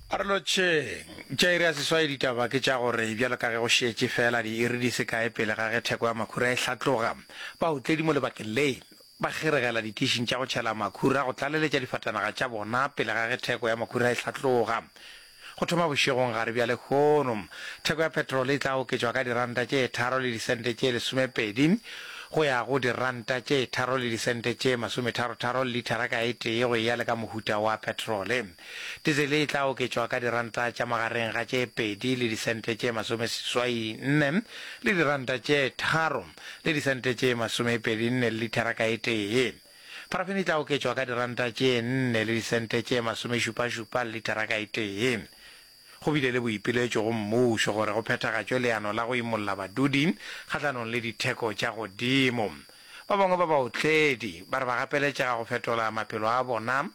A re lotšheng, tša iri ya seswai ditaba ke tša gore bjalo ka ge go šetše feela diiri di se kae pele ga ge theko ya makhura e hlatloga, baotledi mo lebakeng le ba kgiregela ditišing tša go tšhela makhura go tlaleletša difatanaga tša bona pele ga ge theko ya makhura e hlatloga. Go thoma bošegong gare bja lehono, theko ya petrole e tla oketšwa ka diranta tše tharo le disente tše lesomepedi go ya go diranta tše tharo le disente tše masometharotharo lithara ka e tee go eya le ka mohuta wa petrole. Dizele e tla oketšwa ka diranta tša magareng ga tše pedi le disente tše masomeseswai nne le diranta tše tharo le disente tše masomepedi nne lithara ka e tee. Parafene e tla oketšwa ka diranta tše nne le disente tše masomešupašupa le litara ka e tee. Go bile le boipiletšo go mmušo gore go phethagatšwe leano la go imolla badudi kgahlanong le ditheko tša godimo. Ba bangwe ba baotledi ba re ba gapeletšega go fetola maphelo a bona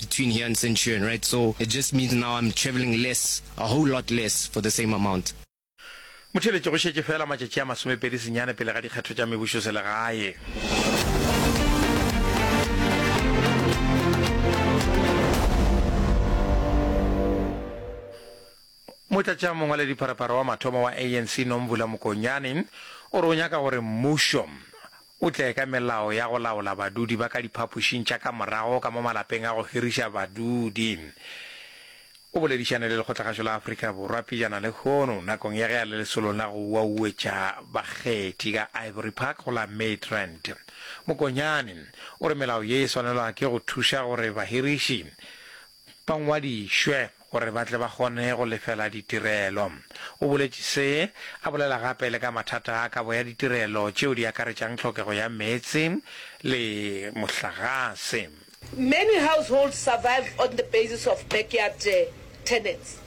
between here and Centurion right so it just means now I'm travelling less a whole lot less for the same amount. Motheeletše, Go šetše feela matšatši a masomepedi senyane pele ga dikgetho tša mebušoselegae. Motlatšamongwaledipharephare wa mathomo wa ANC Nomvula Mokonyane o re o nyaka gore mmušo O tle ka melao ya go laola badudi ba ka diphapošing tša ka morago ka mo malapeng a go hiriša badudi. O boledišane le Lekgotlagašo la Afrika Borwa pejana lehono nakong ya ge a le lesolong la go uauetša bakgethi ka Ivory Park go la Midrand. Mokonyane o re melao ye e swanelwa ke go thuša gore bahiriši ba ngwadišwe gore ba tle ba kgone go lefela ditirelo. O boletše se, a bolela gape le ka mathata a kabo ya ditirelo tšeo di akaretšang tlhokego ya meetse le mohlagase. Many households survived on the basis of backyard tenants.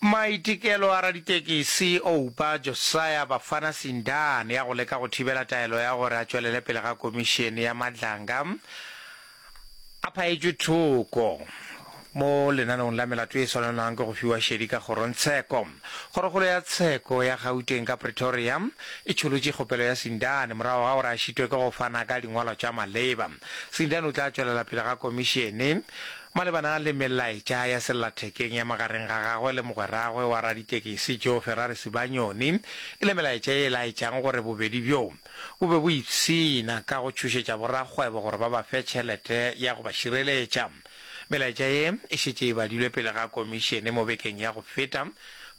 Maitekelo a raditekesi Oupa Josiah Bafana Sindane a go leka go thibela taelo ya gore a tšwelele pele ga komišene ya Madlanga a phaetšwe thoko mo lenaneong la melato e swanelwang ke go fiwa šedi ka kgorongtsheko. Kgorokgolo ya tsheko ya Gauteng ka Pretoria e tšholotše kgopelo ya Sindane morago ga gore a šitwe ke go fana ka dingwalwa tša maleba. Sindane o tla tšwelela pele ga komišene Malebana le melaetša ya sellathekeng ya magareng ga gagwe le mogweragwe wa raditekesi Joe Ferrari Sibanyoni, e le melaetša ye e laetšang gore bobedi bjo bo be bo ipshina ka go tšhošetša borakgwebo gore ba ba fe tšhelete ya go ba šireletša. Melaetša ye e šetše e badilwe pele ga komišene mo bekeng ya go feta,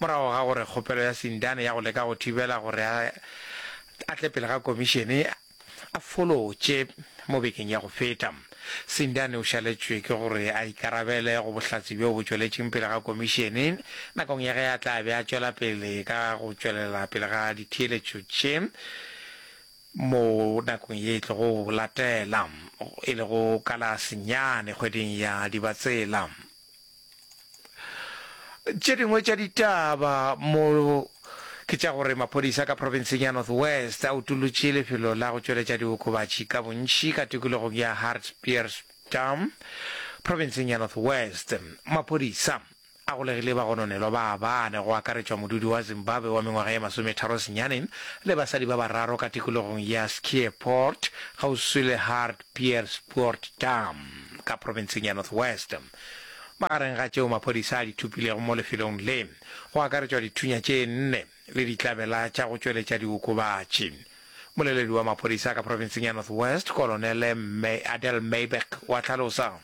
morago ga gore kgopelo ya Sindane ya go leka go thibela gore a tle pele ga komišene, a folotše mo bekeng ya go feta. Sindani o šaletšwe ke gore a ikarabele go bohlatse bjo bo tšweletšeng pele ga komišene nakong ya ge a tla be a tšwela pele ka go tšwelela pele ga ditheeletšo tše mo nakong ye e tlogo latela, e lego ka la senyane kgweding ya Dibatsela. tše dingwe tša ditaba mo ke tša gore maphodisa ka provinseng ya north west a utolotše lefelo la go tšweletša diokobatši ka bontši ka tikologong ya hartbeerstam provinseng ya north west maphodisa a golegile bagononelwa ba bane go akaretšwa modudi wa zimbabwe wa mengwaga ye masometharo senyaneng le basadi ba bararo ka tikologong ya skieport gauswi le hart Pierspoort Dam ka profenseng ya North West. Magareng ga tšeo maphodisa a di thopilego mo lefelong le, go akaretšwa dithunya tše nne le ditlabela tša go tšweletša diokobatši. Mmoleledi wa maphodisa ka profenseng ya North West, Kolonele Adel Meiberg wa hlalosa.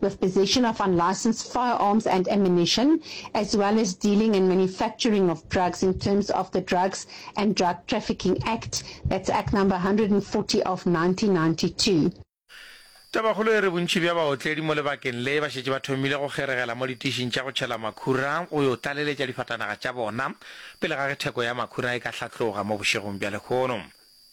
with possession of unlicensed firearms and ammunition, as well as dealing and manufacturing of drugs in terms of the Drugs and Drug Trafficking Act, that's Act number 140 of 1992. Tabakgolo e re bontši bja baotledi mo lebakeng le ba šetše ba thomile go kgeregela mo ditišing tša go tšhela makhura go yo tlaleletša difatanaga tša bona pele ga ge theko ya makhura e ka hlatloga mo bošegong bja lekgono.